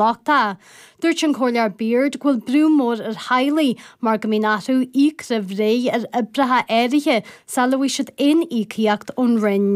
lochta. Dúirt an Comhairleoir Beard go bhfuil brú mór ar theaghlaigh mar go mbíonn orthu íoc roimh ré ar oibreacha áirithe sula bhfaighidh siad aon íocaíocht ón Roinn.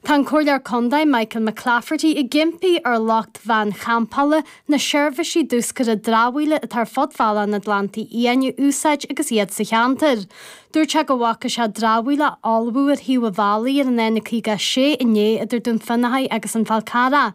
Tá an Comhairleoir Contae Michael McClafferty ag impí ar lucht veain champála na seirbhísí diúscartha dramhaíola atá ar fud Bhealach an Atlantaigh Fhiáin a úsáid agus iad sa cheantar. Dúirt sé go bhfaca sé dramhaíl á fholmhú ar thaobh an bhealaigh ar an N56 inné idir Dún Fionnachaidh agus an Fál Carrach.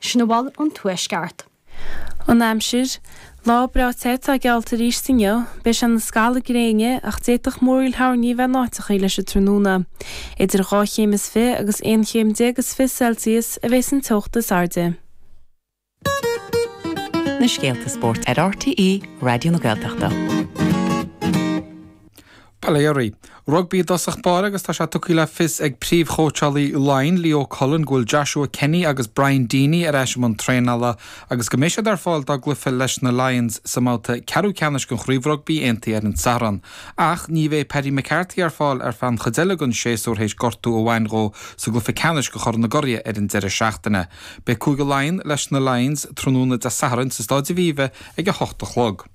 Sin a bhfuil ón Tuaisceart. An aimsir, Lá breá te atá geallta arís inniu. Beidh sé ina scalladh gréine ach d'fhéadfadh múraíl thoirní a bheith in áiteachaí leis an tráthnóna. Idir dhá chéim is fiche agus aon chéim déag is fiche Celsius a bheas an teocht is airde. Na scéalta spóirt ar RTÉ Raidió na Gaeltachta. Bail ó Dhia oraibh. Rugbaí i dtosach báire agus tá sé tugtha le fios ag príomhchóitseálaí Laighean, Leo Cullen, go bhfuil Joshua Kenny agus Brian Deeny ar ais i mbun traenála agus go mbeidh siad ar fáil dá gcluiche leis na Lions sa mbabhta ceathrú ceannais den Chraobh Rugbaí Aontaithe ar an Satharn. Ach ní bheidh Paddy McCarthy ar fáil ar feadh an chuid eile den séasúr théis gortú a bhain dhó sa gcluiche ceannais de Chorn na gCuradh ar an deireadh seachtaine. Beidh Cúige Laighean leis na Lions tráthnóna Dé Sathairn sa Stáid Aviva ag a hocht a chlog.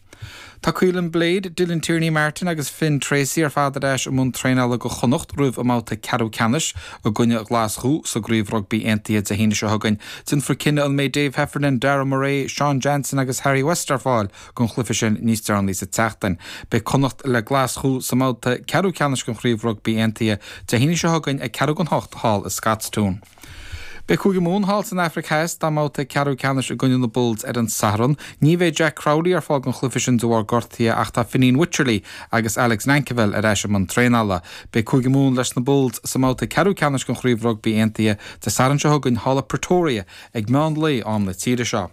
Tá Caolin Blade, Dylan Tierney-Martin agus Finn Treacy ar fad ar ais i mbun traenála do Chonnacht roimh a mbabhta ceathrú ceannais i gcoinne Ghlaschú sa gCraobh Rugbaí Aontaithe Dé hAoine seo chugainn. Déanfar cinneadh an mbeidh Dave Heffernan, Darragh Murray, Sean Jansen agus Harry West ar fáil don chluiche sin níos deireanaí sa tseachtain. Beidh Connacht le Glaschú sa mbabhta ceathrú ceannais den Chraobh Rugbaí Aontaithe Dé hAoine seo chugainn ag ceathrú don hocht thall i Scotstoun. Beidh Cúige Mumhan thall san Afraic Theas dá mbabhta ceathrú ceannais i gcoinne na Bulls ar an Satharn. Ní bheidh Jack Crowley ar fáil don chluiche sin de bharr gortaithe ach tá Fineen Wycherley agus Alex Nankivell ar ais i mbun traenála. Beidh Cúige Mumhan leis na Bulls sa mbabhta ceathrú ceannais den Chraobh Rugbaí Aontaithe Dé Sathairn seo chugainn thall i Pretoria ag meán lae, am na tíre seo.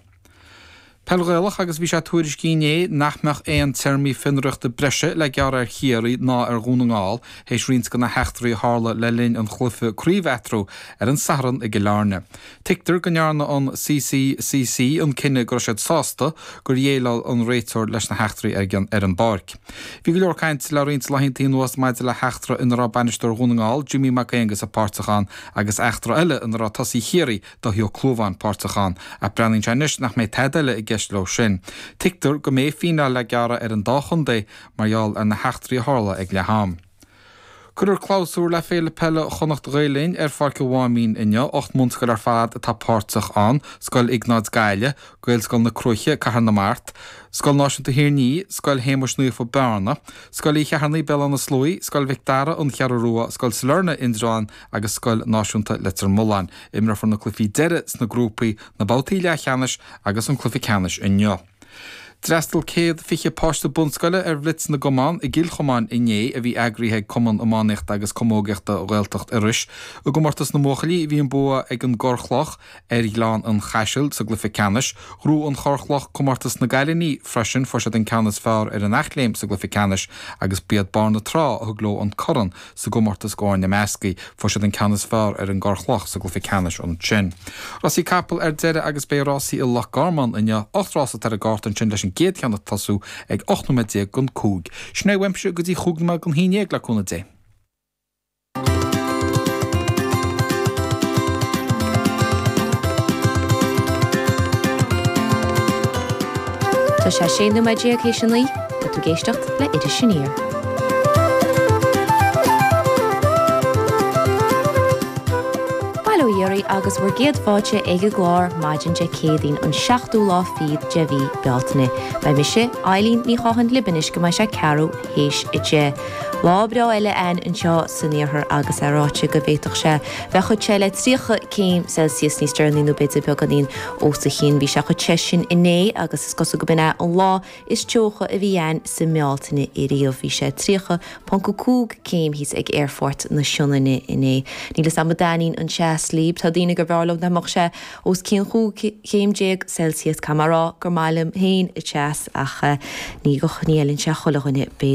Peil Ghaelach agus bhí sé tuairiscithe inné nach mbeadh aon téarmaí fionraíochta breise le gearradh ar Chiarraí ná ar Dhún na nGall théis roinnt de na heachtraí a tharla le linn an chluiche craoibhe eatarthu ar an Satharn i gCill Airne. Tuigtear go ndearna an CCCC an cinneadh go raibh siad sásta gur dhéileáil an réiteoir leis na heachtraí ar an bpáirc. Bhí go leor cainte le roinnt laethanta anuas maidir le heachtra ina raibh bainisteoir Dhún na nGall, Jimmy Mac Aonghusa páirteach ann agus eachtra eile ina raibh tosaí Chiarraí, Dáithí Ó Clúmháin páirteach ann, ach breathnaíonn sé anois nach mbeidh tada eile i gceist leo sin. Tuigtear go mbeidh fíneáil le gearradh ar an dá chontae mar gheall ar na heachtraí a tharla ag leath-am. Cuirfear clabhsúr le Féile Peile Chonnacht Ghael Linn ar Pháirc a' Mháimín inniu. Ocht mbunscoil ar fad atá páirteach ann, Scoil Iognáid Gaillimh, Gaelscoil na Cruaiche, Cathair na Mart, Scoil Náisiúnta Thír an Fhia, Scoil Shéamais Naofa, Bearna, Scoil Uí Cheithearnaigh, Béal Átha na Sluaighe, Scoil Mhic Dara, An Cheathrú Rua, Scoil Sailearna, Indreabhán, agus Scoil Náisiúnta Leitir Mealláin. Imreofar na cluichí deireadh sna grúpaí, na babhtaí leathcheannais agus an cluiche ceannais inniu. D'fhreastal céad fiche páiste bunscoile ar Bhlitz na gCumann i gCill Chomáin inné a bhí eagraithe ag Cumann Iománaíochta agus Camógaíochta Ghaeltacht Iorrais. I gcomórtas na mbuachaillí bhí an bua ag an gCorr Chloch, Ar Ghleann an Chaisil, sa gcluiche ceannais, bhuaigh an Chorr Chloch comórtas na gcailiní, freisin, fuair siad an ceann is fearr ar an Eachléim sa gcluiche ceannais agus b'iad Barr na Trá a thug leo an corn sa gcomórtas d'fhoirne meascaí, fuair siad an ceann is fearr ar an gCorr Chloch sa gcluiche ceannais ansin. Rásaí capall ar deireadh agus beidh rásaí i Loch Garman inniu, ocht rás atá ar an gcárta ansin leis an gcéad cheann ag tosú ag 18 nóiméad dhon cúig. Sin é uaimse go dtí chúig nóiméad dhon haon déag le cúnamh Dé. Tá sé 16 nóiméad théis a naoi. Tá tú ag éisteacht le Iris Aniar. Bail ó Dhia oraibh agus bhur gcéad fáilte ag an gclár maidin Dé Céadaoin an seachtú lá fichead de mhí Bealtaine. Beidh mise, Eilín Ní Chatháin, libh anois go mbeidh sé ceathrú a théis a deich. Lá breá eile ann anseo san iarthar agus é ráite go bhféadfadh sé bheith suas le 30 céim Celsius níos deireanaí nó b'fhéidir beagáinín os a chionn. Bhí sé suas leis sin inné agus is cosúil gurb in é an lá is teocha a bhí ann sa mBealtaine ariamh. Bhí sé 30.5 céim thíos ag Aerfort na Sionainne inné. Níl fhios a'm an dtaitníonn an teas libh. Tá daoine gur bh'fhearr leo dá mbeadh sé. os cionn chúig chéim déag Celsius. Caithfidh mé a rá gur maith liom féin teas, ach ní fheileann sé chuile dhuine.